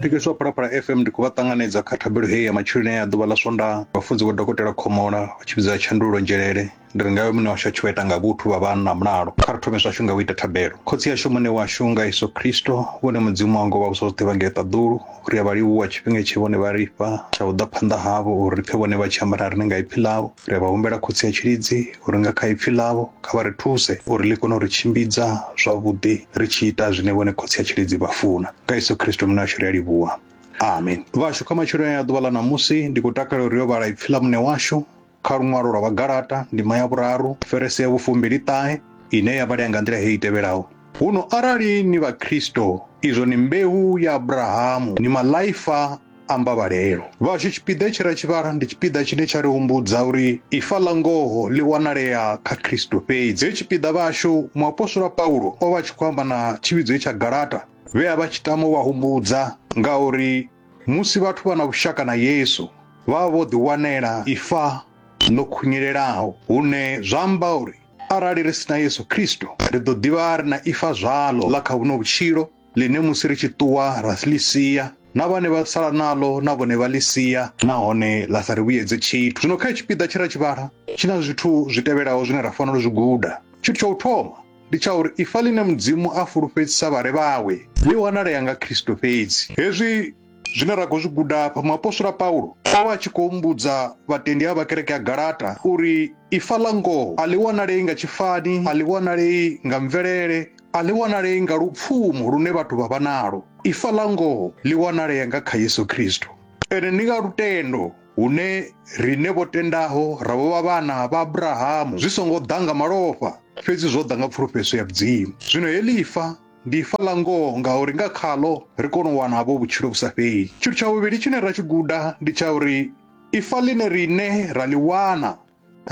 Thikhedzo ya Phalaphala FM ndi khou vha ṱanganedza kha thabelo heyi ya matsheloni ya ḓuvha ḽa Swondaha. Vhafunzi vho Dokotela Khomola vha tshi vhidza Tshandulo Nzhelele ndi ri ngayo muṋe washu a tshi vha ita nga vhuthu vha vha na mulalo. Kha ri thome zwashu nga u ita thabelo. Khotsi ashu Muṋe washu nga Yesu Kristo, vhone Mudzimu wa ngo vha vhusa zwoṱhe vha ngei ṱaḓulu, ri a vha livhuwa tshifhinga tshe vhone vha ri fha tsha u ḓa phanḓa havho uri ri pfe vhone vha tshi amba na riṋe nga ipfi ḽavho. Ri a vha humbela Khotsi ya Tshilidzi uri nga kha Ipfi Ḽavho kha vha ri thuse uri Ḽi kone u ri tshimbidza zwavhuḓi ri tshi ita zwine Vhone Khotsi ya Tshilidzi vha funa. Nga Yesu Kristo Muṋe washu ri a livhuwa. Amen. Vhashu, kha matsheloni aya a ḓuvha ḽa ṋamusi, ndi khou takalela uri ri yo vhala Ipfi ḽa Muṋe washu kha luṅwalo lwa Vhagalata, ndima ya vhuraru, verese ya vhufumbili-ṱahe, ine ya vhalea nga nḓila heyi i tevhelaho, Huno arali ni Vhakristo, izwo ni mbeu ya Abrahamu, ni maḽaifa, amba vhalelo vhashu tshipiḓa tshi ra tshivhala ndi tshipiḓa tshine tsha ri humbudza uri ifa ḽa ngoho ḽi wanalea kha khristu fhedzi he tshipiḓa vhashu muapostola paulo o vha tshi khou amba na tshivhidzo tsha galata vhe a vha tshi tama u vha humbudza nga uri musi vhathu vha na vhushaka na yesu vha vho ḓiwanela ifa ḽo khunyelelaho hune zwa amba uri arali ri si na yesu khristu ri ḓo ḓivha ri na ifa zwalo ḽa kha vhuno vhutshilo ḽine musi ri tshi ṱuwa ra ḽi sia na vhane vha sala naḽo na vhone vha ḽi sia nahone ḽa sa ri vhuyedze tshithu zwino kha tshipiḓa tshe ra tshi vhala tshi na zwithu zwi tevhelaho zwine ra fanela u zwi guda tshithu tsha u thoma ndi tsha uri ifa ḽine mudzimu a fulufhedzisa vhare vhawe ḽi wanalea nga khristo fhedzi hezwi Zwine ra khou zwi guda afha, muapostola Paulo o vha a tshi khou humbudza vhatendi a vha kereke ya Galata uri ifa ḽa ngoho a ḽi wanalei nga tshifani, a ḽi wanalei nga mvelele, a ḽi wanalei nga lupfumo lune vhathu vha vha nalo. Ifa ḽa ngoho ḽi wanalea nga kha Yesu Kristo. Ene ndi nga lutendo hune riṋe vho tendaho ra vho vha vhana vha Abrahamu, zwi songo ḓa nga malofha, fhedzi zwo ḓa nga pfulufhedzo ya Mudzimu. Zwino heḽi ifa ndi ifa ḽa ngoho ngauri nga khaḽo ri kone u wana havho vhutshilo vhu sa fheli tshithu tsha vhuvhili tshine ra tshi guda ndi tsha uri ifa ḽine riṋe ra ḽi wana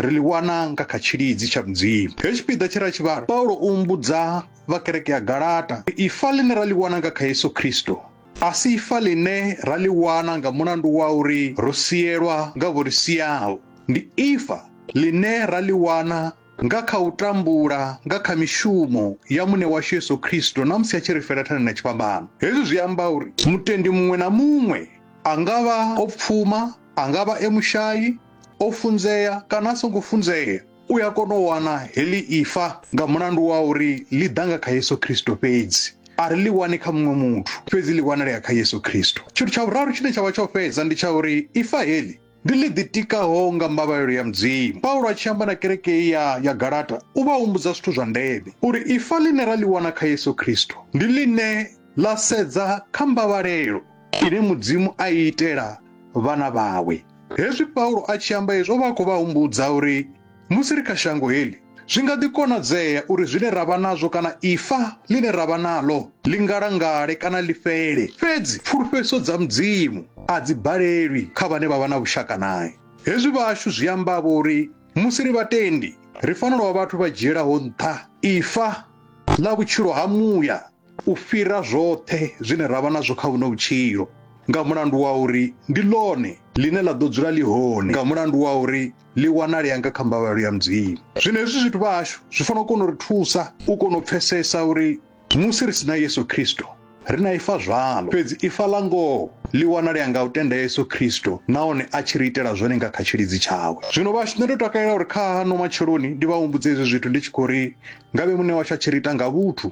ri ḽi wana nga kha tshilidzi tsha mudzimu he tshipiḓa tshi ra tshivhala paulo u mbudza vha kereke ya galata ifa ḽine ra ḽi wana nga kha yesu khristo a si ifa ḽine ra ḽi wana nga mulandu wa uri ro sielwa nga vho ri siaho ndi ifa ḽine ra ḽi wana nga kha u tambula nga kha mishumo ya Muṋe washu Yesu Kristo na musi a tshi ri fela thani na tshifhambano. Hezwi zwi amba uri mutendi muṅwe na muṅwe, a nga vha o pfuma, a nga vha e mushayi, o funzea kana a songo funzea, u a kona u wana heḽi ifa nga mulandu wa uri ḽi ḓa nga kha Yesu Kristo fhedzi. A ri ḽi wani kha muṅwe muthu, fhedzi ḽi wanalea kha Yesu Kristo. Tshithu tsha vhuraru tshine tsha vha tsho fhedza ndi tsha uri ifa heḽi Ndi ḽi ḓitikaho nga mbavhalelo ya Mudzimu. Paulo a tshi amba na kereke ya ya Galata, u vha humbudza zwithu zwa ndeme, uri ifa ḽine ra ḽi wana kha Yesu Kristo ndi ḽine ḽa sedza kha mbavhalelo ine Mudzimu a i itela vhana vhawe. Hezwi Paulo a tshi amba hezwi, o vha a khou vha humbudza uri Musi ri kha shango heḽi, zwi nga ḓi konadzea uri zwine ra vha nazwo kana ifa ḽine ra vha naḽo ḽi ngalangale kana ḽi fhele. Fhedzi pfulufhedziso dza Mudzimu a dzi balelwi kha vhane vha vha na vhushaka nae. Hezwi vhashu zwi amba-vho uri musi ri vhatendi, ri fanela u vha vhathu vha dzhielaho nṱha ifa ḽa vhutshilo ha muya. u fhira zwoṱhe zwine ra vha nazwo kha vhuno vhutshilo nga mulandu wa uri ndi ḽone ḽine ḽa ḓo dzula ḽi hone nga mulandu wa uri ḽi wanalea nga kha mbavhalo ya mudzimu zwino hezwi zwithu vha hashu zwi fanela u kona u ri thusa u kona u pfesesa uri musi ri si na yesu khristo ri na ifa zwalo fhedzi ifa ḽa ngoho ḽi wanalea nga u tenda yesu khristo nahone a tshi ri itela zwone nga kha tshilidzi tshawe zwino vhashu nṋe ndo takalela uri kha hano matsheloni ndi vha humbudze hezwi zwithu ndi tshi khou ri ngavhe muṋe washu a tshi ri ita nga vhuthu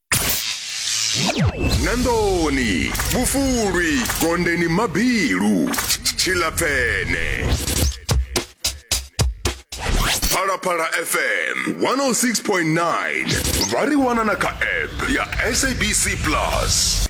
nandoni vhufulwi gondeni mabilu tshilapfene phalaphala fm 106.9 vha ri wana na kha app ya sabc plus